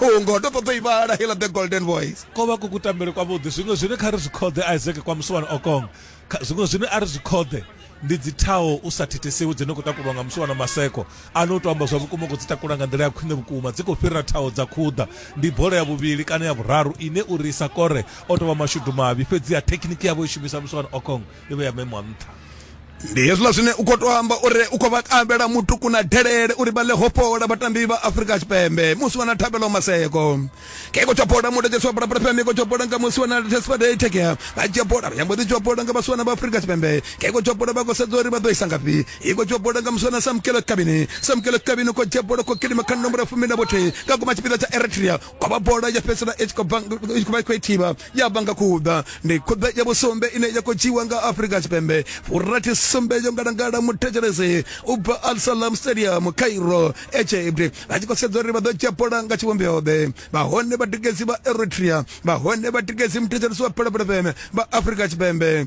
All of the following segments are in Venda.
Oh, ngoho ndo ṱoḓa i vhala hela the golden voice ko vha ku kutambele kwavhuḓi zwiṅwe zwine kha ri zwi khoḓe isaac kwa musiwana okong zwiṅwe zwine a ri zwi khoḓe ndi dzi thaho u sa thithisiwi dzine khou takulwa nga musiwana maseko ano u to amba zwa vhukuma khou dzi takula nga nḓila ya khwine vhukuma dzi khou fhirira thaho dza khuḓa ndi bola ya vhuvhili kana ya vhuraru ine uri isa kore o tovha mashudu mavhi fhedzi ya thekhiniki yavho i shumisa musiwana okong yo vhe ya memo a nṱha ndi hezwiḽa zwine u khou to amba uri u khou vha kambela mutuku na delele uri vha ḽe hopola vhatambi vha afrika tshipembe musi wana thabelo maseko ke ko tshopola mudekesi wa bulabula fm ko tshopola nga musi wana tesfade tekea vha tshopola vha nyambo ḓi tshopola nga vhasiwana vha afrika tshipembe ke ko tshopola vha khou sedza uri vha ḓo isa ngafhi i ko tshopola nga musi wana samkelo kabini samkelo kabini ko tshopola ko kilima kha nomboro ya fumi na vhothihi nga kuma tshipiḓa tsha eritrea kwa vha bola ya fhedzisela i tshi khou bva i tshi khou vha i khou ithiba ya vha nga khuḓa ndi khuḓa ya vhusumbe ine ya khou dzhiwa nga afrika tshipembe furathi sumbe yo ngalangala muthetshelesi u bva al salam stadium cairo egypt vha tshi khou sedza uri vha ḓo dzhia bola nga tshivhumbeo-ḓe vhahone vhatikedzi vha eritrea vhahone vhatikedzi muthetshelesi wa phalaphalafeme vha afrika tshipembe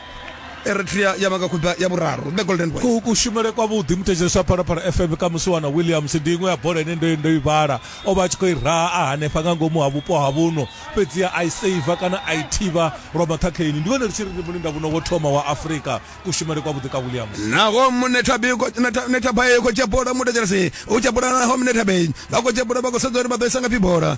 eritrea ya vhanga khutba ya vhuraru the golden boys ku kushumele kwavhuḓi muthetsheleswa phalaphala fm kha musiwana williams ndi iṅwe ya bola ine ndo ndo i vhala o vha a tshi khou i raha a hanefha nga ngomu ha vhupo ha vhuno fhedziha a i seiva kana a i thivha lwa maṱhakheini ndi vhone ri tshi ri ndi mulinda vhuno wo thoma wa afrika kushumele kwavhuḓi ka williams naho munethabay khotshebola muthetshelesi u tshebola naho munethabay vha khotshebola vha khou sedza uri vha ḓo isa nga phi bola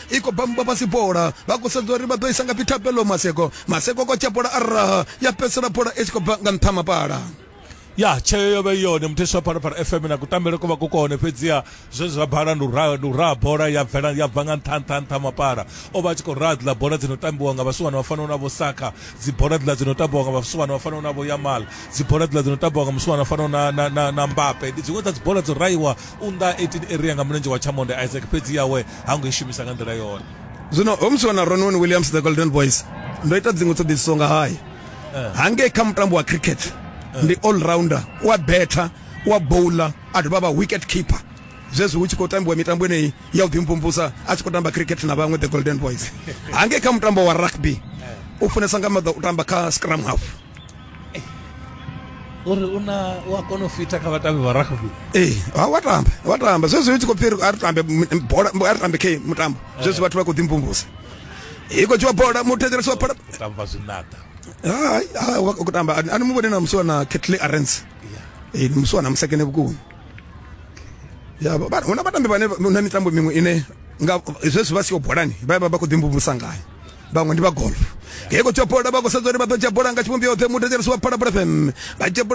i khou bamba fhasi bola vha khou sedza uri vha ḓo isa nga phi thabelo maseko maseko kotsha bola a raha ya fhedzisela bola i tshi khou bva nga nṱha mapala ya tsheo yo vha i yone mutheswa wa phalaphala fm na kutambele ko vha ku kone fhedziha zwe zwa bala ndi u raha- ndi u raha bola ya bvela ya bva nga nṱha nṱha nṱha mapala o vha a tshi khou raha dziḽa bola dzi no tambiwa nga vhasiwana vha fanaho na vho saka dzi bola dziḽa dzi no tambiwa nga vhasiwana vha fanaho na vho yamal dzi bola dziḽa dzi no tambiwa nga musiwana vha fanaho na, na, na, na mbape ndi dziṅwe dza dzi bola dzo rahiwa u nnḓa 18 area nga mulenzhe wa chamond isaac fhedzi yawe ha ngo i shumisa nga nḓila yone zwino ho musiwa na ronwen williams the golden boys ndo ita dziṅwe ṱhoḓisiso nga haye eh. hangei kha mutambo wa cricket eh. ndi all rounder u a betha u a bowler a dovha vha wicket keeper zwezwi hu tshi khou tambiwa mitambo eneyi ya u ḓimvumvusa a tshi khou tamba cricket na vhaṅwe the golden boys hangei kha mutambo wa rugby eh. u funesa nga maḓa u tamba kha scrum half uri una u a kona u fita kha vhatambi vha rugby ee ha wa tamba wa tamba zwezwo i tshi khou pfhi a ri tambe bola a ri tambe khe mutambo zwezwo vhathu vha khou ḓimvumvusa i khou tshiwa bola muthetshelesi wa phala tamba zwinada hai ha wa khou tamba ani mu vhone na musi wana Kettle Arens ee musi wana musekene vhukuma ya ba huna vhatambi vhane na mitambo miṅwe ine nga zwezwo vha siyo bolani vha vha khou ḓimvumvusa ngayo vhaṅwe ndi vha golf ngei khou tsha bola vha khou sedza uri vha ḓo tsha bola nga tshivhumbeo yoṱhe muthu thetshelesi wa phalaphala fm vha tsha bola